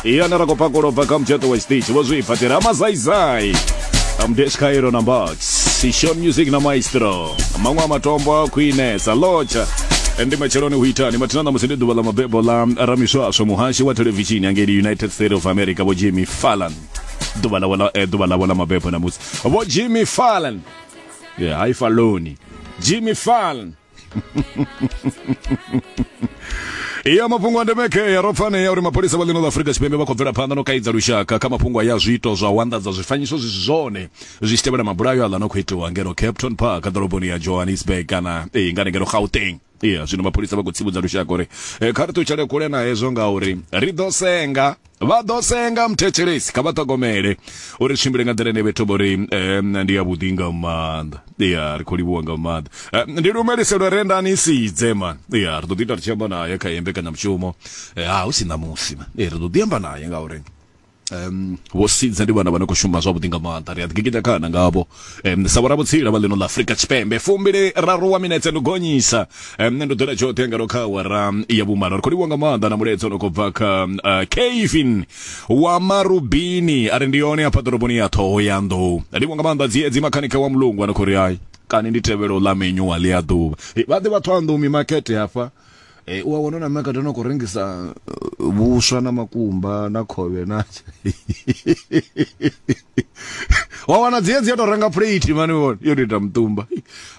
iya na rakopakolo bva kha mutshato wa stage vho zwi phatela mazaizai amdesh cairo na mbax sishon music na maestro maṅwe a matombo a khwinesa lotsha ndi matsheloni hu itani mathina ṋamusi ndi ḓuvha ḽa mabebo ḽa ramiswaswo muhashi wa thelevishini angeli united state of america vho jimmy fallan ḓuvha ḽawe ḽa- eh, ḓuvha ḽawe ḽa mabebo namusi vho jimmy fallan Yeah, hai faloni jimmy fallan iya mafhungo a ndeme kea ro pfanea uri mapholisa vha ḽino ḽa afurika tshipembe vha khou bvela phanḓa no kaidza lushaka kha mafhungo aya zwiito zwa u anḓadza zwifanyiso zwi si zwone zwi tshi tevhela mabulayo aḽa no khou itiwa ngeno capton park ḓoroboni ya johannesburg kana ee ngani ngeno gauteng iya zwino mapholisa vha khou tsivhudza lushaka uri eh, kha ri ṱutshele kule na hezwo ngauri ri ḓo senga vha ḓo senga muthetshelesi kha vha ṱhogomele uri tshimbile nga nḓila ine vhethu vho ri ndi ya vhuḓi nga maanḓa ya ri khou livhuwa nga maanḓa ndi lumeliselo re ndani sidze man ya ri ḓo ḓi ita ri tshi amba naye kha yembe kana mushumo ha hu si ṋamusi man ri ḓo ḓi amba naye ngauri um vho sidze ndi vhana vha no khou shuma zwavhuḓi nga maanḓa ri a ḓi gigita khana ngavho um, sa vhoravhutsila vha ḽino ḽa afurika tshipembe fumbili raru wa minetse ndi gonyisa um, nṋe ndo ḓela tshoṱhe ngalo kha awara ya vhumalo ri khou livhiwa nga maanḓa na mulaedza no khou bva kha uh, kevin wa marubini a ri ndi yone hafha ḓoroboni ya ṱhoho ya nḓou livhiwa nga maanḓa dziedzi makhanikha wa mulungu a no khou ri hai kani ndi tevhelo ḽa menyu wa ḽi a ḓuvha vha ḓe vhathu a nḓumi makete hafha Eh, u a wana na makete no khou rengisa uh, vhuswa na makumba na khovhe na wa wana dzi dzi to renga plate mani vhona yo ita mutumba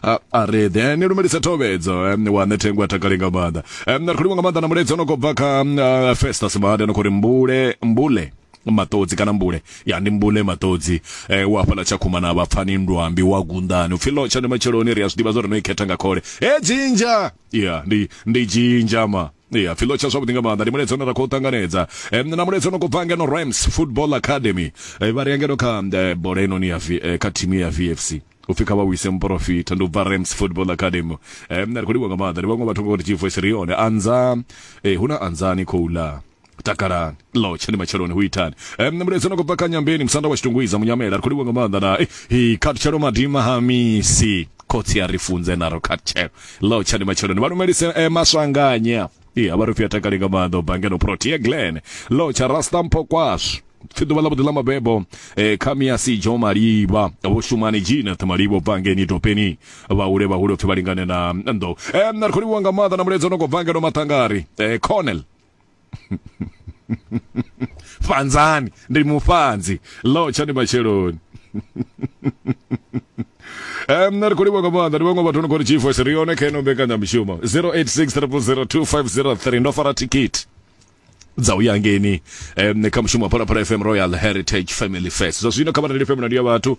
a ah, re then ni lumelisa thobedzo wa ne thengwa takale nga maanḓa um na khulwa nga maanḓa na muledzi ono khou bva kha uh, Festus Made no khori mbule mbule matodzi kana mbule ya ndi mbule matodzi eh, wa hafhala tshakhuma na vhapfani ndwambi wa gundani upfi lotsha ndi matsheloni ri a zwi ḓivha zwo ri no i khetha nga khole he dzinja ya ndi ndi dzhinja ma ya pfhi lotsha zwavhuḓi nga maanḓa ndi muledzi ono ra khou ṱanganedza um, na muledzi ono khou bva ngeno rams football academy um, vha ri yangeno kha um, bola inoni ya v, eh, kha thimu ya vfc upfi kha vha wise muporofita ndi u bva rams football academy um, na ri khou livha nga maanḓa ndi vhaṅwe vhathu ngori chivoice ri yone anza eh, hu na anzani khou ḽa takalani lo tshani matsheloni hu itani um mulaedza no khobva kha nyambeni musanda wa tshitungwiza munyamela ri khou livha nga maanḓa na eh, hi khatshelo madima ha misi khotsi a ri funze naro khatshelo lo tshani matsheloni vha lumelise eh, maswanganya i a vha ri pfi a takale nga maanḓa u bva ngeno protea glen lo tsha rasta mpho kwashu pfi ḓuvha ḽa vhuḓi ḽa mabebo eh, kha miasi jo malivha vho shumani jina ṱhamalivha bva ngeni topeni vhahule vhahule pfi vha lingane na ndo um na ri khou livhiwa nga maanḓa na mulaedza no khobva ngeno maṱangari eh, cornel fanzani ndi mufanzi lo tshani matsheloni Um, ri khou livha nga maanḓa ndi vhaṅwe vhathu no khou ri chief wes ri yone kha ino mbekanyamushumo 0863002503 ndo fara tikiti dza u ya ngeni um, kha mushumo wa phalaphala fm royal heritage family fest zwa zwino kha vhareli fm na ndi ya vhathu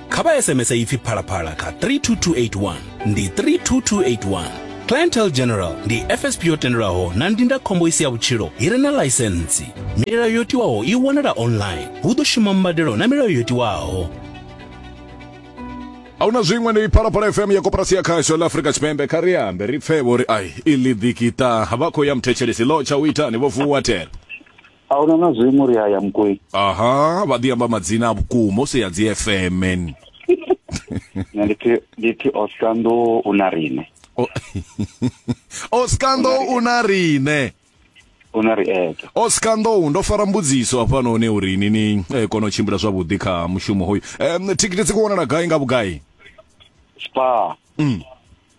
kha vha sms ipfi phalaphala kha 32281 ndi 32281 clientele general ndi fsp yo tendelwaho na ndindakhombo i si ya vhutshilo i re na ḽaisentsi milayo yo tiwaho i wanala online hu ḓo shuma mbadelo na milayo yo tiwaho a hu na zwiṅwe ndi phalaphala fm ya koporasi ya khasho ḽa afrika tshipembe kha ri ambe ri pfe vho ri ai i ḽi ḓikita vha khou ya muthetshelesi ḽo tsha u itani vho vuwa tela a huna na zwiṅwe ri a ya mukwei aha vha ḓi amba madzina a vhukuma u si ya dzi fm nṋe ndi thi ndi thi oskando u na riṋe O- oskando u na riṋe u na ri eto oskando ndo fara mbudziso hafhanoni uri ni ni eh, kone u tshimbila zwavhuḓi kha mushumo hoyu um, thikhithi dzi khou wanala gai nga vhugai spa Mm.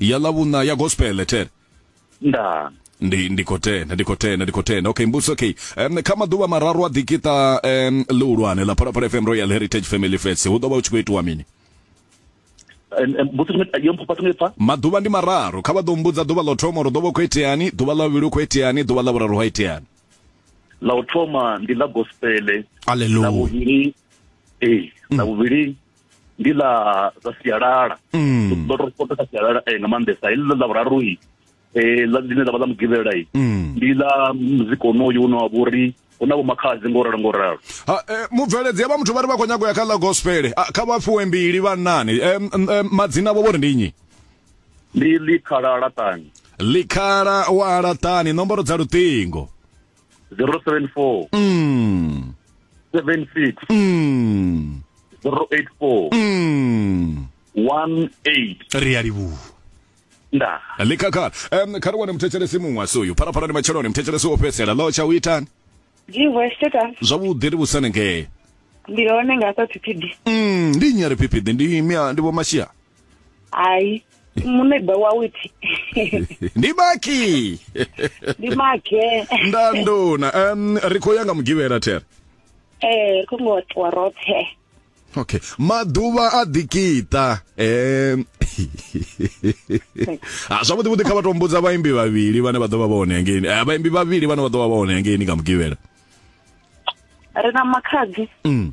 ya lavhuna ya gospel ten nda ndi ndi khou tenda ndi khou tenda ndi khou tenda okay mbuso okay um, kha maḓuvha mararu a ḓikiṱa um, ḽihulwane ḽa phalaphala fm royal heritage family fest hu ḓo vha hu tshi khou itiwa mini mbuso tshimwe yo mphafa tshimwe pfa maḓuvha ndi mararu kha vha ḓo mbudza ḓuvha ḽo thoma uri ḓo vha hu khou iteani ḓuvha ḽa vhuvhili hu khou iteani ḓuvha ḽa vhuraru ha iteani la u thoma ndi la gospele la aleluya vhuvhili ee la vhuvhili ndi ḽa ḽa sialala mm. ndo to spota kha sialala eh, nga maanḓesa heḽi ḽa vhuraru i eh, ḽine ḽa vha ḽa mugivhela i mm. ndi ḽa muzika onoyu une wa vhori hu na vhomakhadzi ngo ralo ngo ralo eh, mubveledzi vha muthu vha ri vha khou nyanga u ya kha ḽa gospel ah, kha vha fhiwe mbili vhannani madzina vho vhori ndi nnyi ndi likhala laṱani likhala wa laṱani nomboro dza luṱingo 074 mm 76 mm 084 mm 18 ri a livhuwa nda likakhala um kha ri wane muthetshelesi muṅwe asi uyu pharapharani ndi matsheloni muthetshelesi wo fhedzisela ḽo tsha u itani Jiwe Steta zwavhuḓi ri vhusane ngee ndi hone nga sa Phiphiḓi. mm ndi nnyi a ri phiphiḓi ndi mia ndi vho mashia hayi munebe wawuthi ndimaki ndimake ndanduna um ri khou ya nga mugivhela thera eh kungotiwa roṱhe okay maḓuvha a ḓikiṱa um zwavhuḓi vhuḓi kha vha to mbudza vhaimbi vhavhili vhane vha ḓo vha vha hone hangeini eh, vhaimbi vhavhili vhane vha ḓo vha vha hone hangeini nga mugivhela ri na makhadzi mm.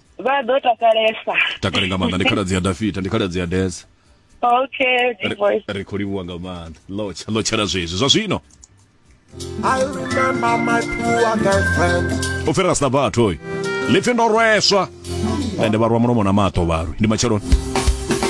vha ḓo takalesa takale nga maanḓa ndi khaladzi ya dafita ndi khaladzi ya desa okay big boys ri khou livhuwa nga maanḓa lotsha lotshela zwezwi zwa zwino I remember my poor girlfriend. u fhirela sina vhathu oyu lipfi ndo rweswa ende vha rwa mulomo na maṱo vharwi ndi matsheloni